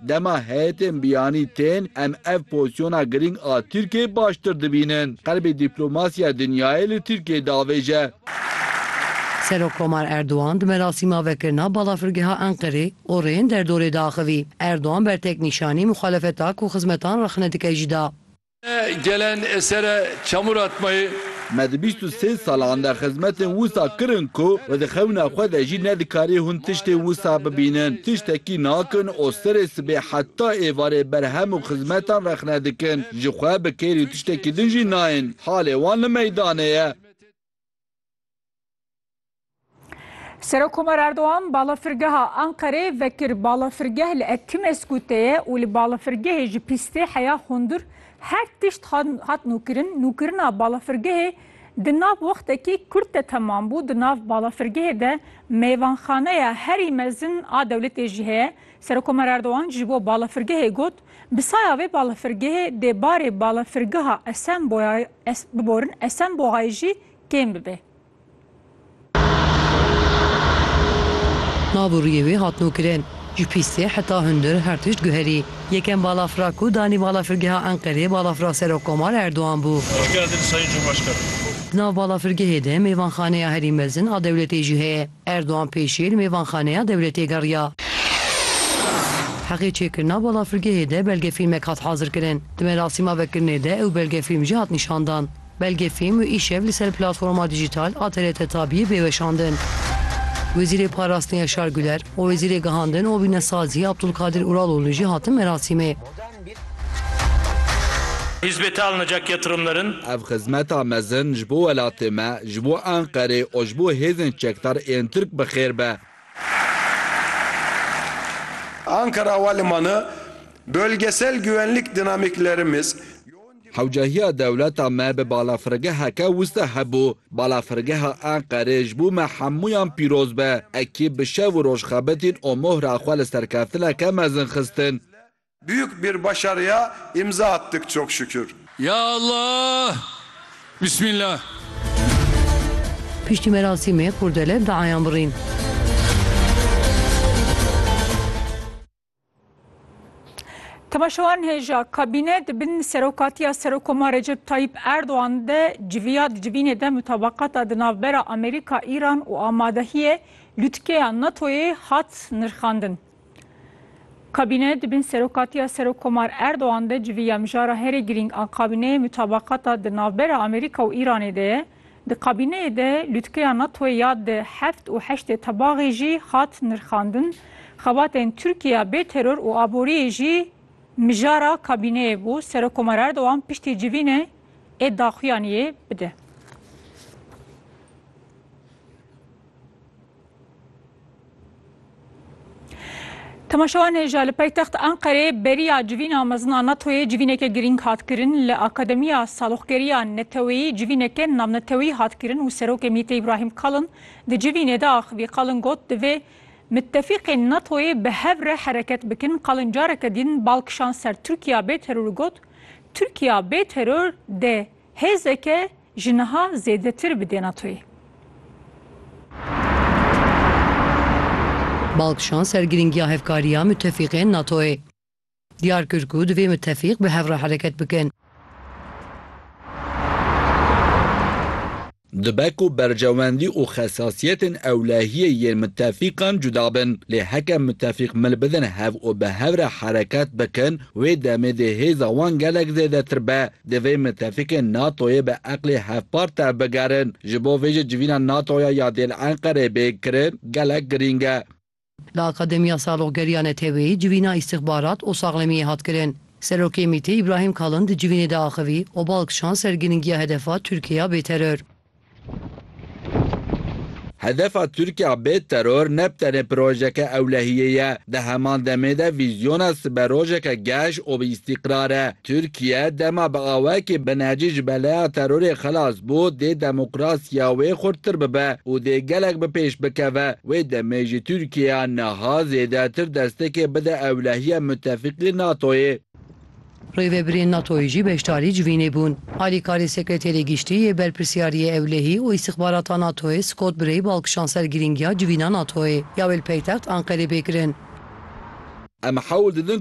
Dema heyetên biyanî tên, em ev pozîsyona girîng a Tirkiyeyê baştir dibînin. Qelbê dîplomasîya dinyayê li Tirkiyeyê diavêje. Serokkomar Erdogan di merasîma vekirina Balafirgeha Enqerê û rêyên derdorê diaxivî. Erdogan bertek nîşanî muxalefeta ku xizmetan rexne dike jî da. Gelen esere çamur atmayê. Me di bîst û sê salan de xizmetên wisa kirin ku we di xewna xwe de jî nedikarî hûn tiştê wisa bibînin. Tiştekî nakin û serê sibê heta êvarê berhem û xizmetan rexne dikin. Ji xwe bi kêrî tiştekî din jî nayên. Halê wan li meydanê ye. Serokomar Erdogan balafirgeha Anqerê vekir balafirgeh li Ekimesku te ye û li balafirgehê ji pîstê heya hundir her tişt hat nûkirin. Nûkirina balafirgehê di nav wextekî kurt de temam bû. Di nav balafirgehê de mêvanxaneya herî mezin a dewletê jî heye. Serokomar Erdogan ji bo balafirgehê got, Bi saya vê balafirgehê dê barê balafirgeha Esenboyayê biborin, Esenbohayê jî kêm bibe. Nav û rûyê wê hat nûkirin. Ji pîstê heta hundir her tişt guherî. Yekem balafira ku danî balafirgeha Enqereyê balafira Serokkomar Erdogan bû. Hoş geldin Sayın Cumhurbaşkanım. Di nav balafirgehê de mêvanxaneya herî mezin a dewletê jî heye. Erdogan pêşî li mêvanxaneya dewletê geriya. Heqê çêkirina balafirgehê de belgefîlmek hat hazirkirin. Di merasîma vekirinê de ew belgefîlm jî hat nîşandan. Belge fêm û îşev li ser platforma dîjîtal a TRT-Tabiyê bê weşandin. Wezîrê Parastin Yaşar Güler û Wezîrê Gihandin û Wînesazî Abdulkadir Uraloğlu jî hatin merasîmê. Hizmete alınacak yatırımların. Ev xizmeta mezin ji bo welatê me, ji bo Enqerê û ji bo hêzên çekdar ên Tirk bi xêr be. Ankara Havalimanı, bölgesel güvenlik dinamiklerimiz, Hewcehiya dewleta me bi balafirgeheke wisa hebû. Balafirgeha Enqerê ji bo me hemûyan pîroz be. Ekî bi şev û roj xebitîn û mohra xwe li serkeftineke mezin xistin. Büyük bir başarıya imza attık çok şükür. Ya Allah! Bismillah! Piştî merasîmê kurdele bi eyan birîn. Temaşewan hêja kabîne di bin serokatiya Serokomar Recep Tayyip Erdogan de civiya di civînê de mutabaqata di navbera Amerîka, Îran û amadehiyê lûtkeya NATOyê hat nirxandin. Kabîne di bin serokatiya Serokomar Erdogan de civiya mijara herî girîng a kabîneyê mutabaqata di navbera Amerîka û Îranê de ye. Di kabîneyê de lûtkeya NATO'yê ya di heft û heştê tebaxê jî hat nirxandin. Xebatên Tirkiyeya bê teror û aboriyê jî mijara kabîneyê bû. Serokkomar Erdogan piştî civînê ê daxuyaniyê bide. Temaşewan hêja li paytext Anqerê beriya civîna mezin a NATO'yê civîneke girîng hat kirin. Li Akademiya Saloxgeriya Neteweyî civîneke navnetewî hat kirin û Serokê MቘT'ê Îbrahîm Kalin di civînê de axivî. Kalin got, Divê mitefîqên NATO'yê bi hev re hereket bikin. Kalin careke din bal kişand ser Tirkiya bê teror û got, Tirkiya bê teror dê Hêzeke ji niha zêdetir bi dê NATOyê. Bal kişand ser girîngiya hevkariya mutefîqên NATOyê. Diyar kir ku divê mutefîq bi hev re hereket bikin. Dibe ku berjewendî û xesasiyetên ewlehiyê yên mitefîqan cuda bin, lê heke mitefîq mil bidin hev û bi hev re hereket bikin, wê demê dê hêza wan gelek zêdetir be. Divê mitefîqên NATO'yê bi eqlê hevpar tevbigerin. Ji bo vê jî civîna NATO'ya ya dêl Enqereyê bê kirin gelek girîng e. Li Akademiya Saroxgeriya Neteweyî civîna Îstixbarat û Saxlemiyê hat kirin. Serokê MĪT'ê Îbrahîm Kalin di civînê de axivî, Obal kişand ser girîngiya hedefa Tirkiye ya bêteror. Hedefa Tirkiye ya bêteror ne bi tenê projeke ewlehiyê ye, di heman demê de vîzyona siberojeke geş û bi îstîqrar e. Tirkiye dema bi awayekî binecî ji beleya terorê xilas bû, dê demokrasiya wê xurttir bibe û dê gelek bi pêş bikeve. Wê demê jî Tirkiyeya niha zêdetir destekê bide ewlehiya mutefîqî NATO'yê. Rêvebirên NATO'yê jî beşdarî ji vî nebûn. Alîkarê Sekreterê Giştî yê Berpirsiyariyê Ewlehî û Îstixbarata NATO'yê Scott Bray bal kişand ser girîngiya civîna NATO'yê ya wê li paytext Anqerê bê kirin. Em hewl didin